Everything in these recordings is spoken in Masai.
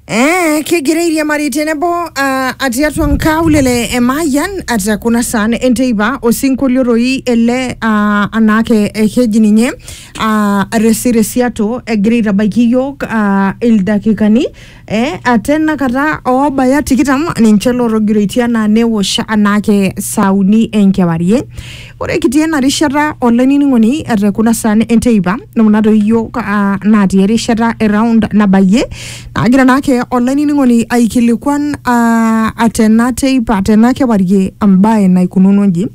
Eh, kigirairie mari tenebo uh, atii atua nkaulele e Mayian ata kuna saan enteipa osinkolio toi ele uh, anaake eh, keji ninye uh, resiresiato egira aitabaiki iyiook uh, ildakikani eh, ate enakata oobaya tikitam ninche lootogiroitie anaa newosh anaake saa uni enkewarie Ore kitii ena rishata olainining'oni ete kuna saan enteipa kuna toi iyiook ah, natii erishata e round nabayie naagira naake olainining'oni aikilikuan ah, tena teipa tena kewarie embae naikununo inji.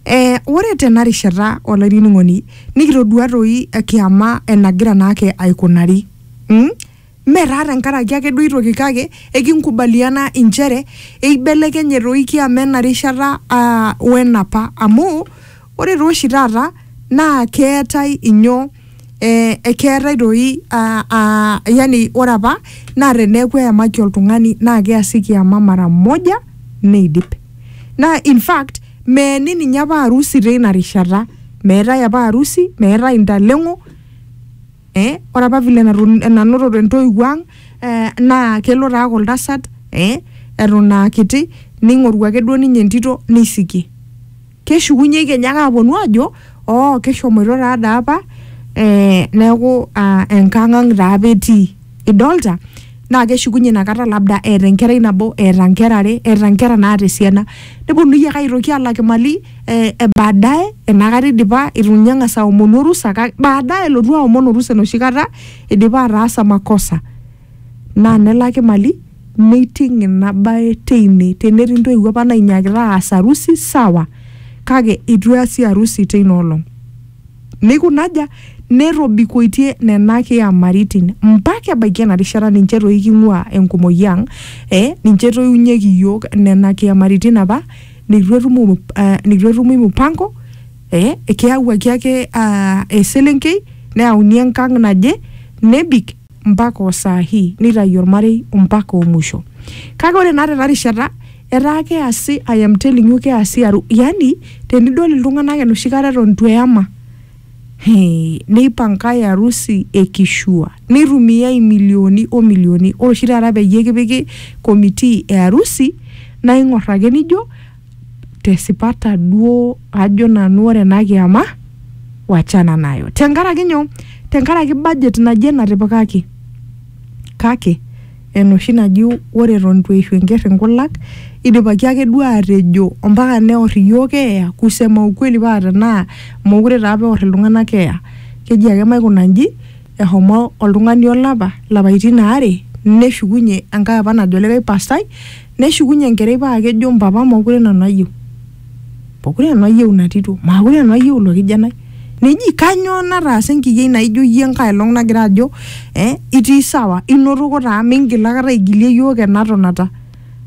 Eh, ore tena rishata olainining'oni nikitodua toi kiama enagira naake aikunari mm? Mme taa tenkaraki ake duo aitoki kake ekinkubaliana inchere eibelekenye toi kiama ena rishata aa wenapa amu ore taa oshi taata naa keetae inyoo eh, ekeetae toi aa aa yani ore apa naa teneeku eyamaki oltung'ani naa keasi kiama mara moja neidip. Naa in fact meeni ninye apa arusi teina rishata, meetae apa arusi, meetae intaleng'o eh, ore apa vile naton- nanototo entoiwuo ang eh, naa kelo taa aaku oltasat eh, eton aa kiti ning'oru ake duo ninye entito neisikie keshukunye kenya ake aponu ajo oo keshomoito taa daa apa eh, neeku ah, enkang ang taa apa etii idolta naa keshukunye inakata labda eeta enkerai nabo eeta nkera are eeta nkera naata esiana neponunui ake aitoki alak imali eh, eh, baadaye enakata idipa itu ninye eng'as aomonu orusa kake baadaye elotu aomon orusa enoshi kata idipa ataasa makosa naa nelaki mali neiting ina bae teine tenetii intoiwuo apa nainyiakita aas harusi sawa kake itu easi harusi teina olong neikunaja netobikoitie nena kiamaritin mpaka ebaiki ena rishata ninche toi king'ua enkumoi ang eh, ninche etoiunyieki iyiok nena kiamaritin apa neitu etum mu- ah, neitu etumi mupango eh, keyawuaki ake ah, eselenkei neyauni enkang naje nebik mpaka osaa hii neitayu ormarei mpaka omusho kake ore naa tena rishata etaa keasi I am telling you keasi aru yani tenidol iltung'anak enoshi kata eton itu eyama Neipankae arusi e kishua neitumiai imilioni o milioni. Ore oshi taata peyie kipiki committee e arusi naa ing'or ake nijo te sipata duo ajo nanu ore ena kiyama wachana nayo. Tenkaraki nyoo? Tenkaraki budget naje natipikaki kake enoshi naji ore eton itu eishu enker inkulak idipaki ake duo atejo ompaka neor iyiook keeya kusema ukweli paa tenaa mokure taa apa eor iltung'anak keeya keji ake maikuna inji ehomo oltung'ani olapa lapaitin aare neshukunye enkae apa najo likae pastai Neshukunye enkerai paa kejo mpapa mookure nanu ayieu. Mokure nanu ayieu ina tito, maakure nanu ayieu ilo kijanai. Neji kanyoo nataasa enkiyiai naijo iyie enkae olong nagira ajo eh itii sawa, inotoko taa mingil aikata aigilie iyiok ena tonata.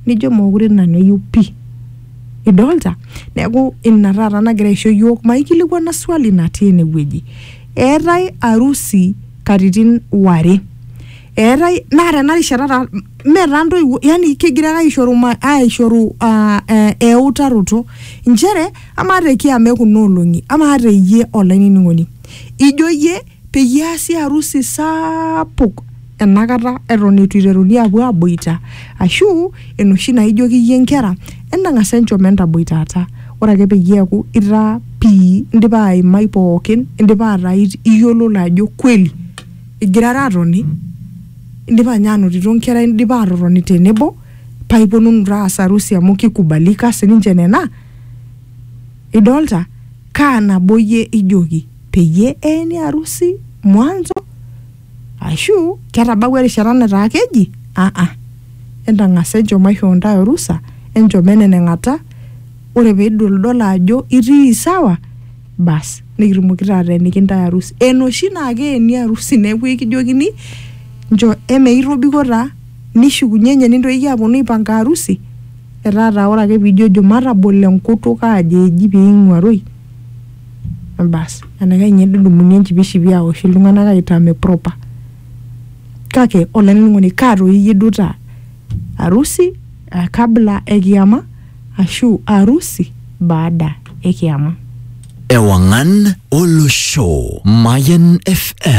Nijo mookure nanu ayieu pii. Idolita? Neeku ina taata nagira aisho iyiok maikilikuana swali natii enewueji. Eetae arusi katitin ware. eetae naa tena rishata taa mme taa ntoiwuo yani kegira ake aishoru ma- aishoru ah, eh, eutaroto nchere amaa te kiama ekuna olong'i amaa te iyie olainining'oni ijo iyie peyie easi harusi sapuk enakata eton eitu iteruni apuo aboita ashu enoshi naijoki iyie inkera entang'as enchom entaboitata ore ake peyie eeku itaa pii indipa aimai pookin indipa ataa it- iyiololo ajo kweli Igirara aatoni, indipa ninye aanotito nkera indipa aatotoni tenebo paa ipuonunu taa aas arusi amu kikubalika sii ninche nena. Idolita? Kaa nabo iyie ijoki peyie eeni arusi mwanzo aashu ketabawua erishata netaa keji aa entang'asa enchom aishoo intae orusa enchom eneneng'ata ore pee idoldolo ajo itii sawa bas nikitumoki taa ateeniki ntae arusi enoshi naa keeni arusi neeku ekijokini nchoo eme itobiko taa nishukunye nye nintoki aponu aipanga arusi etaa taa ore ake piijojo matabolo enkutuk aajo eji piing'uaroi bas enaikash ninye nedumuni enchipishipi aosh iltung'anak aitame proper kake olainining'oni kaa toi iyie duo taa arusi eh, kabla ekiyama ashu arusi baada e kiama. Ewang'an Olosho, Mayan FM.